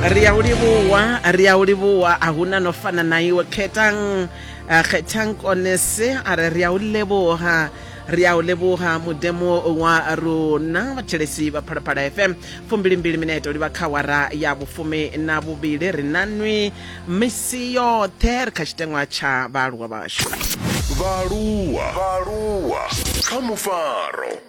ri a u livhuwa ri a u livhuwa a hu na no fana na iwe khethang ah, khethang konese a re ri a u levhuha ri a u levhuha mudemo wa rona vhatshelesi vha phalaphala fm fumbilimbili mineto livha kha wara ya vhufumi na vhuvhili ri na nwi misi yoṱhe ri kha tshiteṅwa tsha vhaaluwa vhashu vhaaluwa vhaaluwa kha mufaro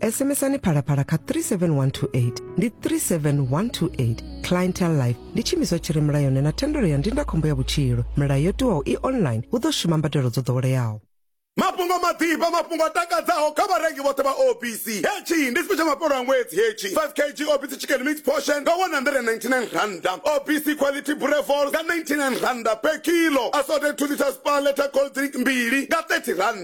sms-ani phalaphala kha 37128 ndi 37128 clientele life ndi tshiimiswa tshi re mulayoni na thendelo ya ndindakhombo ya vhutshilo milayo yo tiwaho i online hu ḓo shuma mbadelo dzo ḓoweleaho mafhungo maḓifha mafhungo a takadzaho kha vharengi vhoṱhe vha obc hetshi ndi sipesha mafhelo a ṅwedzi hetshi 5 kg obc chicken mix portion nga 199 randa obc quality brevol nga 99 randa per kilo assorted 2 liters paleta cold drink mbili nga 30 randa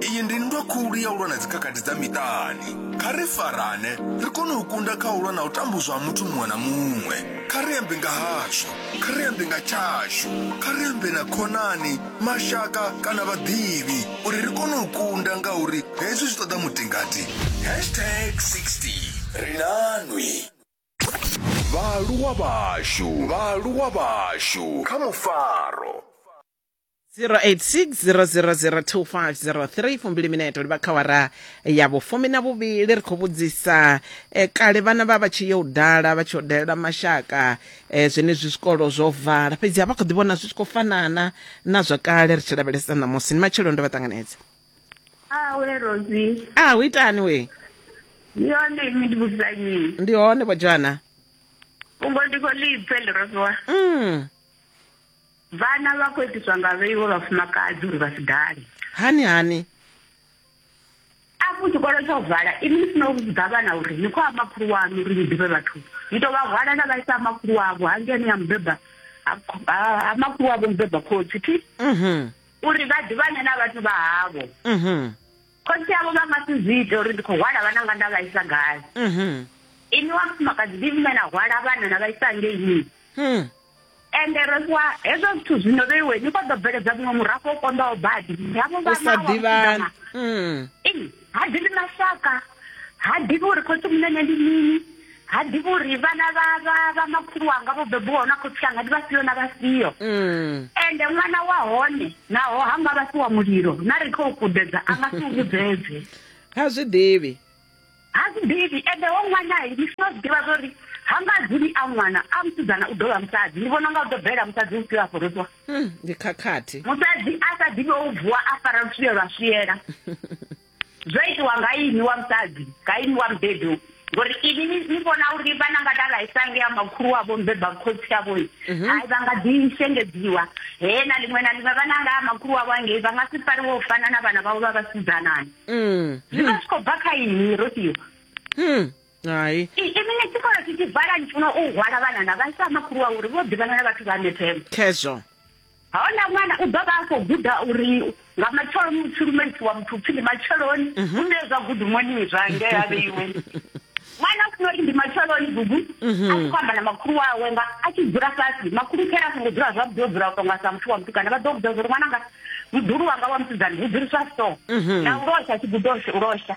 Iyi ndi nndwa khulu ya u lwa na dzikhakhathi dza miṱani. Kha ri farane, ri kone u kunda kha u lwa na u tambudzwa ha muthu muṅwe na muṅwe. Kha ri ambe nga hashu, kha ri ambe nga tshashu, kha ri ambe na khonani, mashaka kana vhaḓivhi uri ri kone u kunda ngauri hezwi zwi ṱoḓa mutingati. Hashtag 60 ri na nwi. Vhaaluwa vhashu, vhaaluwa vhashu kha mufaro. 0860002503 fumbili mineto ndi bakhawara ya vhufumi na vhuvhili ri khou vhudzisa eh, kale vhana vha vha tshi yo u dala vha tshi yo dalela mashaka eh, zwenezwi zwikolo zwo vala fhedzi a vha khou ḓi vhona zwi tshi khou fanana na zwa kale ri tshi lavhelesa ṋamusi ni matshelo ndo vha ṱanganedza awe rosi a hu itani we ndi yone imi ndi vhudzanyi ndi hone vho joana fhungo ndi khou lipfe ḽi rosiwa mm. Vhana vha khou itiswa nga vhei wa vhafumakadzi uri vha si dale. Hani hani? Afho tshikolo tsho vala, inwi ni si no vhudza vhana uri ni khou ha makhulu waṋu uri ni ḓivhe vhathu. Ni tou vha hwala na vha isa ha makhulu wavho hangeni ha mubeba ha makhulu wavho mubeba khotsi thi. Uri vha ḓivhane na vhathu vha havho. khotsi avho vha nga si zwi ite uri ndi khou hwala vhana nga nda vha isa gai mhm. ini wa mufumakadzi ndi vhune na hwala vhana na vha isa ngeini hmm. ende ro fhiwa hezwo zwithu zwino vheiwe ni kho ḓo bveledza muṅwe murafho o konḓaho badi havho vhanawaḓivhana hmm. ha ḓivhi mashaka ha ḓivhi uri khotsi munene ndi mini ha ḓivhi uri vhana vha vha vha makhulu wanga vho bebiwaho na khotsi anga ndi vhafhio na vhafhio mm. ende ṅwana wa hone naho ha nga vha si wa mulilo na ri khou kudedza a nga si u vhudzedze ha zwi ḓivhi ha zwi ḓivhi ende wo ṅwana ndi funa zwi ḓivha zwo ri ha nga dzuli a ṅwana a musidzana u ḓo vha musadzi ndi vhona nga u ḓo bvelela musadzi u fhio a fhorodziwa hmm, ndi khakhathi musadzi a sa ḓivhi o u vuwa a fara luswiye lwa swiela zwo itiwa nga ini wa musadzi nga ini wa mubebi ngori ini ni vhona uri vhana nga dala isange ya makhulu wavho mbeba khotsi avho mhm. hai vha nga ḓi shengedziwa he na ḽiṅwe na ḽiṅwe vhana nga makhulu wavho angei vha nga si fariwe u fana na vhana vhavho vha vhasidzanani mm. zwi vha zwi khou bva kha ini ro tiwa hmm. hai ini ni tshikolo tshi tshi vala ni funa u hwala vhanana vha isa makhulu wa uri vho ḓivhana na vhathu vha methemo khezwo hona ṅwana u ḓo vha a khou guda uri nga matshelo muthu lumelisi wa muthu upfhi ndi matsheloni u mhm. nṋe zwa gudumoni zwa ngea vheiwe ṅwana u funa uri ndi matsheloni gugu mhm. a tshi khou amba na makhulu wawe nga a tshi dzula fhasi makhulu khera a songo dzula zwavhuḓi o dzula u tonga sa muthu wa mutukana vha ḓo vhudza zwa uri ṅwana nga mudulu wanga wa musidzana hu dzuliswa so mhm. na u losha tshigudoshe u losha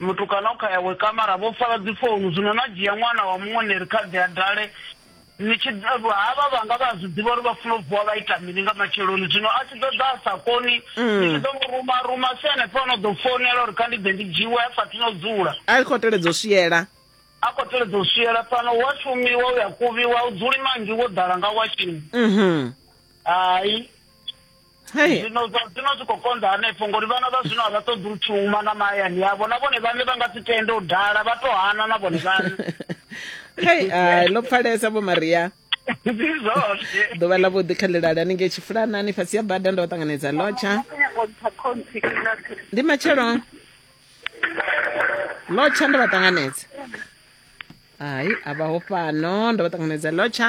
mutukana o kha yawe kamara vho fara dzi founu zwino na dzhia ṅwana wa muṅwe ni ri kha ḓi a dale ni tshi havha vhanga vha zwi ḓivha uri vha funa u vuwa vha ita mini nga matsheloni zwino a tshi ḓo ḓa a sa koni mm. ni tshi ḓo mu ruma ruma si hanefho ono ḓo founela uri kha ndi ḓe ndi dzhiwe a sathu no dzula a khou teledza u swiela a khou teledza u swiela fhano wa shumiwa u ya kuvhiwa u dzuli manzhi wo ḓala nga washini mhm. hai zwino zwa zwino zwi khou konḓa hanefho ngori vhana vha zwino a vha ṱoḓi u shuma na mahayani yavho na vhone vhaṋe vha nga si tende u dala vha to hana na vhone vhaṋe hei ai ḽo pfalesa vho maria ḓuvha ḽa vhuḓi kha ḽilali haningei tshifulanani fhasi ya bada ndo ṱanganedza lotsha ndi matshelo lotsha ndo vha ṱanganedza hai a vhaho fhano ndo vha ṱanganedza lotsha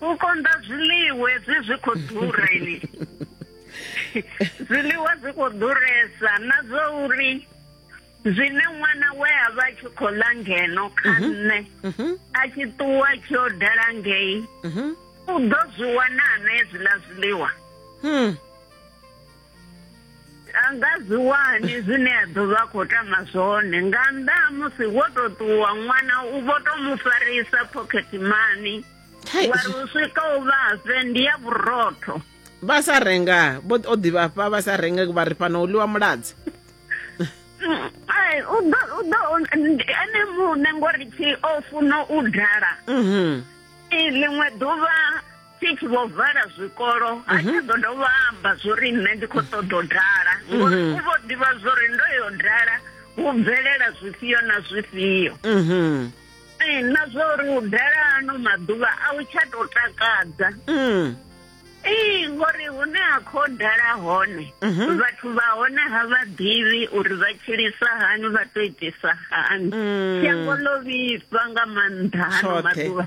u konḓa zwiḽiwe zwi zwi khou ḓura ini zwiḽiwa zwi khou ḓuresa na zwo uri zwine ṅwana we a vha tshi khou ḽa ngeno kha mhm. nṋe mhm. a tshi ṱuwa tshi o dala ngei mhm. u ḓo zwi wana na hezwiḽa zwiḽiwa hmm. a nga zwi wani zwine a ḓo vha khou tama zwone nga nnḓa ha musi wo to ṱuwa ṅwana u vho to mu farisa pocket money wa ri u swika u vhafhe ndi ya vhurotho vha sa renga vho o ḓivhafha vha sa renga vha ri fhano u ḽiwa muladzi ai u ḓo u ḓo ene muṋe ngori tshi o funa u dala mhm. ḽiṅwe ḓuvha six vho vala zwikolo ha tsha mhm. ḓo dovha amba zwo ri nṋe ndi khou ṱoḓa u dala mhm. ngori u vho ḓivha zwo ri ndo yo dala hu bvelela zwifhio na zwifhio mhm. eh, na zwa uri u dala ano maḓuvha a u tsha tou takadza mm. ee ngori hune ha khou dala hone mhm. vhathu vha hone ha vha ḓivhi uri vha tshilisa hani vha to itisa hani mm. shango ḽo vhifha nga maanḓa hano maḓuvha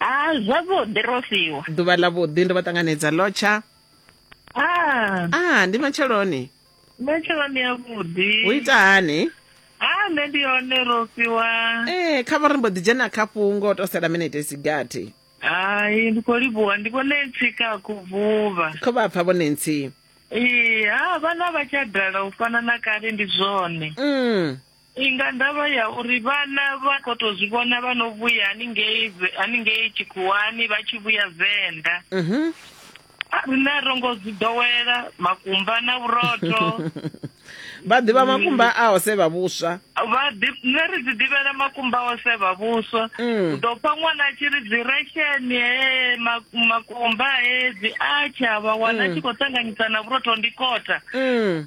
Ah, zwavhuḓi ro fhiwa. Ḓuvha ḽa vhuḓi ndo vha ṱanganedza lotsha. Ah. Ah, ndi matsheloni. Matsheloni ya vhuḓi. U ita hani? Ah, nṋe ndi hone ro fhiwa. Eh, kha vha ri mbo ḓi dzhena kha fhungo to sela minete sigathi. Hai, ndi khou livhuwa, ndi vhone ntsi ka khuvhuva. Kho vha pfa vhone ntsi. Ee, ha vhana vha tsha dala u fana na kale ndi zwone. Mm. Ndi nga ndavha ya uri vhana vha khou tou zwi vhona vha no vhuya haningei haningei tshikhuwani vha tshi vhuya venḓa mhm. rine ro ngo zwi ḓowela makumba na vhurotho vha ḓivha makumba a ose vha vhuswa vha nṋe ri dzi ḓivhela makumba a ose vha vhuswa mm. u ḓo pfa ṅwana a tshi ri dzi resheni he makumba he dzi atsha vha wana mm. tshi khou ṱanganyisa na vhurotho ndi kota mm.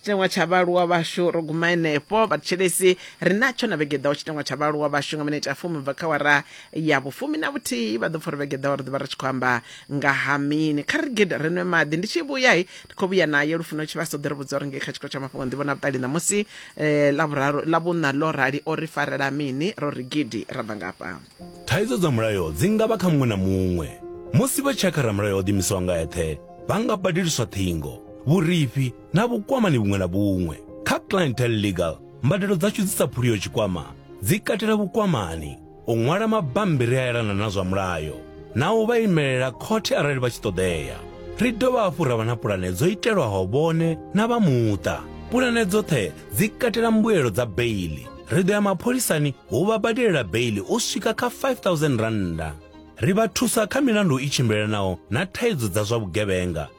tshiteṅwa tsha vhaaluwa vhashu ro guma henefho vhathetshelesi ri natsho na vhege ḓaho tshiteṅwa tsha vhaaluwa vhashu nga minete ya fumi bva kha wara ya vhufumi na vhuthihi vha ḓo pfa uri vhege ḓaho ri ḓo vha ri tshi khou amba nga ha mini kha ri gede ri nwe maḓi ndi tshi vhuya hi ndi khou vhuya naye lufuno tshivhaso ḓo ri vhudza uri ngei kha tshikolo tsha mafhungo nḓivho na vhuṱali ṋamusi eh, lavhuraru lavhuṋa ḽo rali o ri farela mini ro ri gidi ra bva ngafha Thaidzo dza mulayo dzi nga vha kha muṅwe na muṅwe. Musi vha tshi ya kha ramulayo o ḓiimisaho nga eṱhe, vha nga badeliswa ṱhingo, vhurifhi, na vhukwamani vhuṅwe na vhuṅwe. Kha Clientele Legal, mbadelo dzashu dzi sa phuriho tshikwama dzi katela vhukwamani, u ṅwala mabammbiri a elana na zwa mulayo na u vha imelela khothe arali vha tshi ṱoḓea. Ri dovha hafhu ra vha na pulane dzo itelwaho vhone na vha muṱa. Pulane dzoṱhe dzi katela mbuelo dza beiḽi. Ri ḓo ya mapholisani u vha badelela beiḽi u swika kha R5000. Ri vha thusa kha milandu i tshimbilelanaho na thaidzo dza zwa vhugevhenga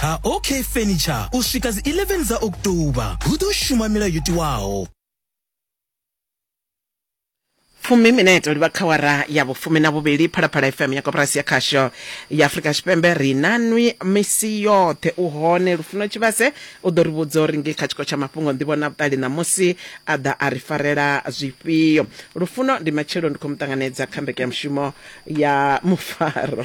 ha OK Furniture u swika dzi 11 dza October. Hu ḓo shuma milayo yo tiwaho. fumi mineto livha kha wara ya vhufumi na vhuvhili phalaphala fm ya koporasi ya khasho ya afurika tshipembe ri na nwi misi yoṱhe u hone lufuno tshivhase u ḓo ri vhudza uri nge kha tshiko tsha mafhungo nḓivho na vhuṱali ṋamusi a ḓa a ri farela zwifhio lufuno ndi matshelo ndi khou mu ṱanganedza kha mbekanyamushumo ya mufaro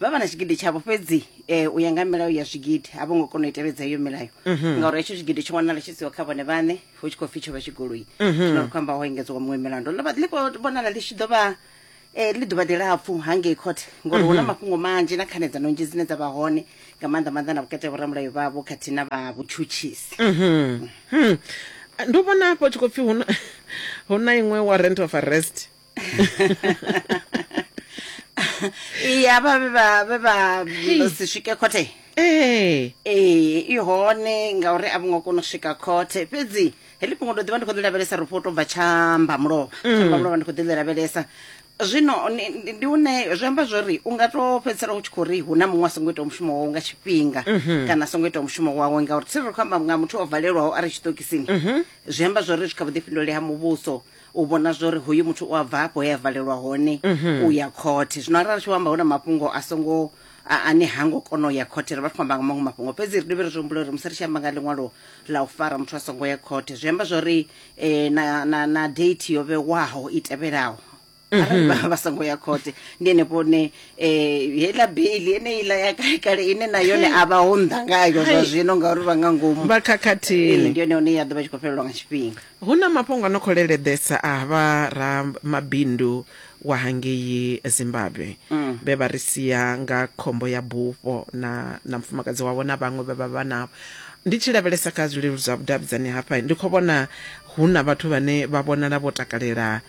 vha vha na tshigidi tshavho fhedzi um u ya nga milayo ya zwigidi a vho ngo kona u i tevhedza iyo milayo mhm. ngauri hetsho tshigidi tsho wanala tshi siho kha vhone vhaṋe hu tshi khou pfi tsho vha tshigoloi mhm. zwino ri khou amba ho engedzwa muṅwe milandu ḽo vha ḽi khou vhonala ḽi tshi ḓo vha um eh, ḽi ḓuvha ḽilapfu hangei khothe ngori hu na mhm. mafhungo manzhi na khanedza nonzhi dzine dza vha hone nga maanḓa maanḓa na vhukati ha vhoramulayo vhavho khathihi na vha vhutshutshisi hmm. ndo vhona hafho tshi khou pfi hu na iṅwe warrant of arrest iye avha vhe vha vhe vha vha si swike khothe ee ee i hone ngauri a vho ngo kona u swika khothe fhedzi heḽi fhungo ndo ḓivha ndi khou ḽi lavhelesa ri fho tou bva tshamba mulovha tshamba mulovha ndi khou ḓi ḽi lavhelesa zwino ni- ndi ndi une zwi amba zwori u nga to fhedzisela u tshi khou ri hu na muṅwe a songo itaho mushumo wawe nga tshifhinga kana a songo itaho mushumo wawe ngauri tsiri ri khou amba nga muthu o valelwaho a re tshiṱokisini zwi amba zwori zwi kha vhuḓifhinduleli ha muvhuso u vhona zwori hoyu muthu u a bva hafho he a valelwa hone u ya khothe zwino arali tshi amba hu na mafhungo a songo a- ane ha ngo kona u ya khothe ri vha ri khou amba nga maṅwe mafhungo fhedzi ri dovhe ri zwi humbule uri musi ri tshi amba nga ḽiṅwalo ḽa u fara muthu a songo ya khothe zwi amba zwori eh, na, na, na date yo vhewaho i tevhelaho arali vha vha songo ya khothe ndi henefho ne um heiḽa beili eneiḽa ya kale kale ine na yone a vha ho nnḓa ngayo zwa Hai. zwino ngauri vha nga ngomu vha khakhathini Ee, ndi yone hone ya ḓo vha tshi khou fhelelwa nga tshifhinga Hu na mafhungo a no khou leleḓesa a vha ramabindu wa hangei Zimbabwe vhe vha ri sia nga khombo ya bufho na na mufumakadzi wavho na vhaṅwe vhe vha vha navho. Ndi tshi lavhelesa kha zwileludzi zwa vhudavhidzani hafha, ndi khou vhona hu na vhathu vhane vha vhonala vho takalela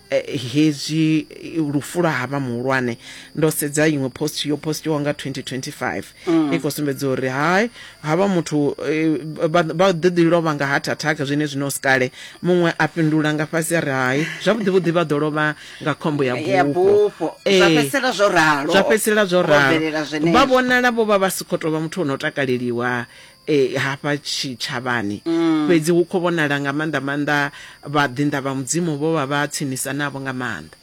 eh, hezwi lufu lwa havha muhulwane ndo sedza iṅwe post yo postiwa nga 2025 mm. i khou sumbedza uri hai havha muthu eh, vha vha ḓo ḓi lovha nga heart attack zwine zwino si kale muṅwe a fhindula nga fhasi a ri hai zwavhuḓi vhuḓi vha ḓo lovha nga khombo ya ya bufho bufho Eh, zwa fhedzisela zwo ralo zwa fhedzisela zwo Ho bvelela ralo zwenezwo. vha vhonala vho vha vha si khou tou vha muthu o no takaleliwa hafha tshitshavhani. Fhedzi hu khou vhonala nga maanḓa-maanḓa vhaḓinḓa vha Mudzimu vho vha vha tsinisa navho nga maanḓa.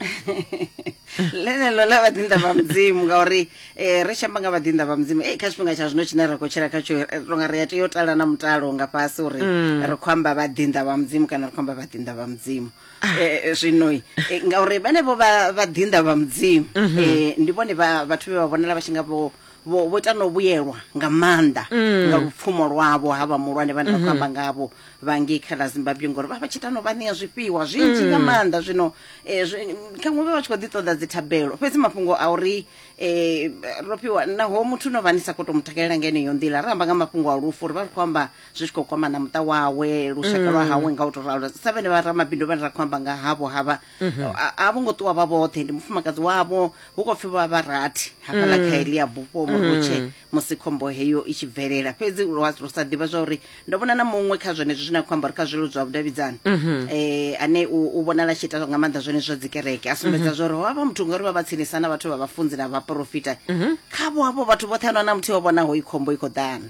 Ḽeneḽo ḽa vhaḓinḓa vha Mudzimu ngauri ri tshi amba nga vhaḓinḓa vha Mudzimu kha tshifhinga tsha zwino tshine ra khou tshila khatsho ri tou nga ri a tea u tala na mutalo nga fhasi uri ri khou amba vhaḓinḓa vha Mudzimu kana ri khou amba vhaḓinḓa vha Mudzimu. Zwino ngauri vhenevho vhaḓinḓa vha Mudzimu ndi vhone vhathu vhe vha vhonala vha tshi nga vho vho vho tano vhuyelwa nga maanḓa mm. nga lupfumo lwavho ha vha mulwane vhane vha khou amba mm-hmm. ngavho vha ngei kha ḽa zimbabwe ngori vha vha tshi tano vha ṋea zwifhiwa zwinzhi nga mm. maanḓa zwino eh, khaṅwe vha vha tshi khou ḓi ṱoḓa dzi thabelo fhedzi mafhungo a uri eh, ro fhiwa naho muthu no vha ni sa khou to mu takalela nga eneyo nḓila ri amba nga mafhungo a lufu uri vha ri khou amba zwi tshi khou kwama na muṱa wawe lushaka lwa hawe nga u to ralo sa vhene vha ramabindu vhane ra khou amba nga havho havha mhm. a vho ngo ṱuwa vha vhoṱhe ndi mufumakadzi wavho hu khou pfhi vha vha rathi hafhaḽa mm. kha heḽi ya bufho murutshe mm. musi khombo heyo i tshi bvelela fhedzi ro sa ḓivha zwa uri ndo vhona na muṅwe kha zwenezwo zwine a khou amba uri kha zwilo zwa vhudavhidzani um mhm. eh, ane u vhonala tshi ita nga maanḓa zwenezwo dzi kereke a sumbedza mhm. zwa uri ho vha muthu ngauri vha vha tsinisa na vhathu vha vhafunzi na vhaporofita khavho havho vhathu vhoṱhe ano na muthu o vhonaho i khombo i khou ḓana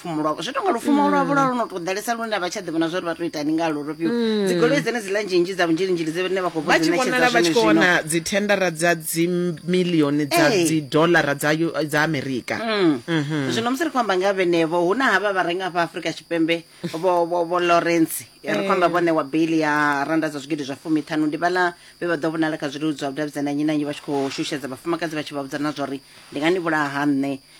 lupfumo lwavho zwi tonga lupfumo mm. lwavho lwa lwo no to ḓalesa lune a vha tsha ḓivhona zwa uri vha to itani nga lwo lufhio mm. dzigoloi dzene dziḽa nzhinzhi dza vunzhilinzhili dzine vha khou vha tshi vhonala vha tshi khou vhona dzithendara dza dzimilioni dza dzidolara dza amerika mm. mhm. zwino musi ri khou amba nga vhenevho hu na havha vha renga hafha afrika tshipembe vho lawrence ri khou amba vhone wa bail ya randa dza zwigidi zwa fumi ṱhanu ndi vhala vhe vha ḓo vhonala kha zwiludzwa vhudavhidzana nyi na nyi vha tshi khou shushedza vhafumakadzi vha tshi vha vhudza na zwa uri ndi nga ni vhulaha ha nṋe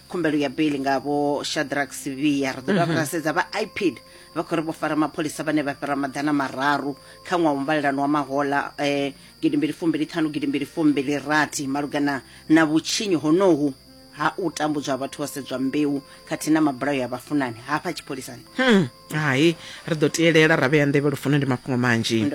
khumbelo ya beli nga vho shadrack sivhiya ri ḓo dovha ra sedza vha ipid vha khou ri vho fara mapholisa vhane vha fhira maḓana mararu kha ṅwaha wa muvhalelano wa mahola um gidi mbili fumbili ṱhanu gidi mbili fumbili rathi malugana na vhutshinyi honohu ha u tambudzwa ha vhathu vho sedzwa mbeu khathihi na mabulayo ya vhafunani hafha tshipholisani hai ri ḓo tielela ra vhea nḓevhe lufuno ndi mafhungo manzhi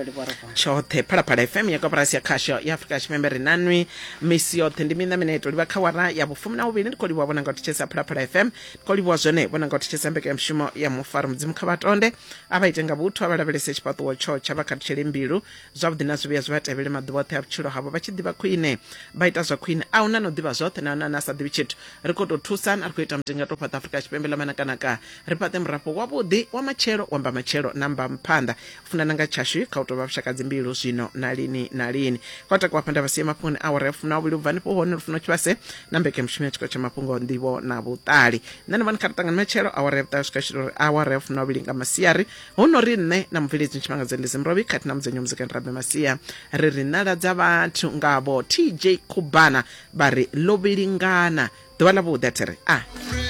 tshoṱhe phalaphala fm ya koporasi ya khasho ya afurika tshipembe ri nanwi misi yoṱhe ndi miṋa mine to livha kha wara ya vhufumi na vhuvhili ndi khou livhuwa vhona nga u thetshelesa phalaphala fm ndi khou livhuwa zwone vhona nga u thetshelesa mbekanyamushumo ya mufaro mudzimu kha vhatonde a vha ite nga vhuthu a vha lavhelese tshifhaṱuwo tsho tsha vha khathutshele mbilu zwavhuḓi na zwivhuya zwi vha tevhele maḓuvha oṱhe a vhutshilo havho vha tshi ḓivha khwine vha ita zwa khwine a hu na no ḓivha zwoṱhe na hone a na sa ḓivhi tshithu ri khou tou thusana ri khou ita mutinga to fhaṱa afurika tshipembe ḽa manakanaka ri fhaṱe murafho wavhuḓi wa matshelo wa mbamatshelo na mbamphanḓa u funana nga tshashu kha u tou vha vhushakadzi mbilu zwino na lini na lini kha u takuwa phanḓa vhasiye mafhungoni awara ya funa uvhili u bva nifho hone lufuno tshivhase na mbeke mushumo ya tshiko tsha mafhungo nḓivho na vhuṱali nṋe ni vhani kha ri ṱangani matshelo awara ya vhuṱali swika tshilo uri awara ya funa uvhili nga masiari hu no ri nṋe na mubveledzi ntshimangadzo ndi zimrovhi khathihi na mudzenyo muzikani rabe masia ri ri nala dza vhathu ngavho tj khubana vha ri lovhilingana ḓuvha ḽa vhuḓi a thi ri a